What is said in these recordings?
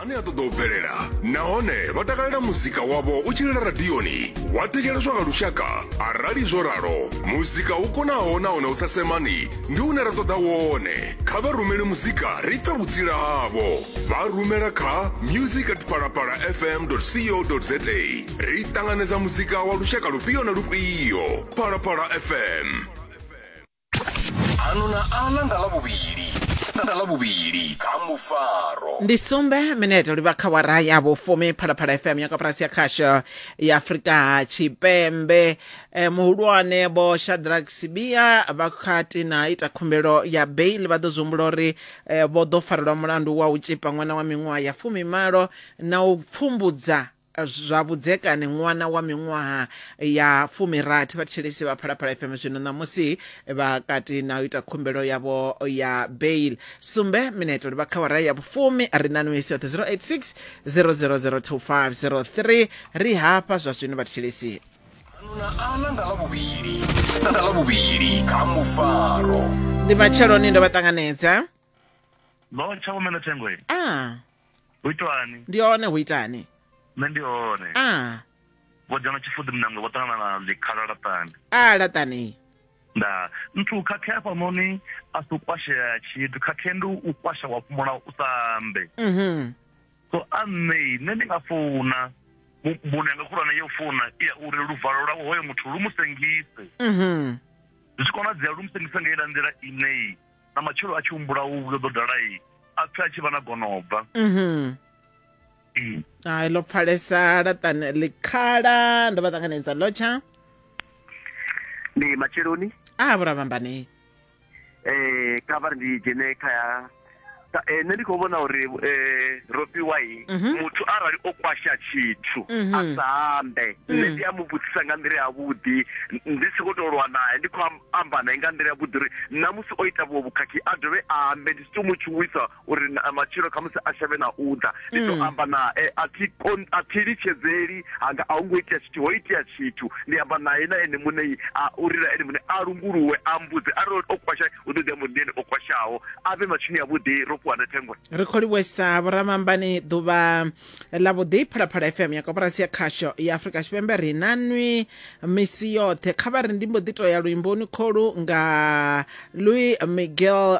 ane a ṱoḓa u bvelela nahone vha takalela muzika wavho u tshilela radioni wa thetsheleswa nga lushaka arali zwo ralo muzika u konaho nahone u sa semani ndi une ra ṱoḓa wone kha vha rumele muzika ri pfe vhutsila havho vha rumela kha music at palapala fm co za ri ṱanganedza muzika wa lushaka lufhio na lufhio palapala fm ano na aḽa nga ḽavhuvhili nga ḽavhuvhili kha mufaro ndi sumbe minete livha kha wara ya vhufumi phalaphala fm ya kaporasi ya khasho ya afurika tshipembe eh, muhulwane vho shadrack sibia vha kati na ita khumbelo ya bail vha ḓo zwi humbula uri eh, vho ḓo farelwa mulandu wa u tshipa ṅwana wa miṅwaha ya fumimalo na u pfumbudza zwa vhudzekani ṅwana wa miṅwaha ya fumirathi vhathetshelesi vha phalaphala fm zwino ṋamusi vha kati na u ita khumbelo yavho ya bail sumbe mineto ri vha khawara ya vhufumi ri na nwesi yoṱhe 086 0002503 ri hafha zwa zwino vhathetshelesi na ana nga ḽavhuvhili na nga ḽavhuvhili kha mufaro ndi matsheloni ndo vha ṱanganedza no tsha umela thengo a hu itwani ndi hone hu itani nṋe ndi hone a vho dzhena tshifuḓi munangwe vho ṱangana na ḽikhala laṱani a laṱani nda nthu khakhea hafhanoni a si u kwashea tshithu khakhea ndi u kwasha wa fhumula u sa ambe mhm so a nṋe nṋe ndi nga founa mu- mbuno yanga khulwane yo founa i ya uri luvalo lwawe hoyo muthu lu mu sengise mhm zwi tshi konadzea lu mu sengise nga ila nḓila ineyi na matshelo a tshi humbula u vhuyo ḓo dala i a pfhe a tshi vha na gonobva mhm. mm. hai ḽo pfalesa laṱani ḽikhala ndo vha ṱanganedza lotsha ndi matsheloni a ah, vhuravhambani um eh, kha vha ri ndi dzhene kha ya eh, nṋe ndi khou vhona uri um eh, robiwai mhm. muthu arali o kwasha tshithu mhm. a sa ambe nṋe ndi a mu vhudzisa nga nḓila yavhuḓi ndi si khou tou lwa nae ndi khou amba nae nga nḓila yavhuḓi uri ṋamusi o ita vhuṅwe vhukhakhi a dovhe a ambe, ndi si tou mu tshuwisa uri matshelo khamusi a shavhe na u ḓa. Ndi ḓo amba nae, a thi a thi litshedzeli hanga a hu ngo itea tshithu, ho itea tshithu. Ndi amba nae na ene muṋe a u lila ene muṋe, a lunguluwe, a mmbudze arali o kwasha hu ḓo ḓi amba uri ndi ene o kwashaho, a vhe matshinoni avhuḓi ro fhiwa na thengwe. Ri khou livhuwesa vhoramambani ḓuvha ḽa vhuḓi Phalaphala FM ya koporasi ya khasho ya Afrika Tshipembe ri na nwi misi yoṱhe kha vha ri ndi mbo ḓi to ya luimboni kholu nga louis miguel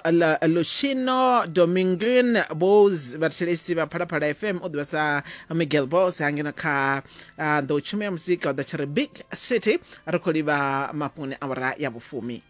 lushino dominguin bos vhathetshelesi vha phalaphala fm u ḓivha sa miguel bos hangeno kha uh, ḓo tshuma ya muzika u ḓa tshi ri big city ri khou livha mafhungoni awara ya vhufumi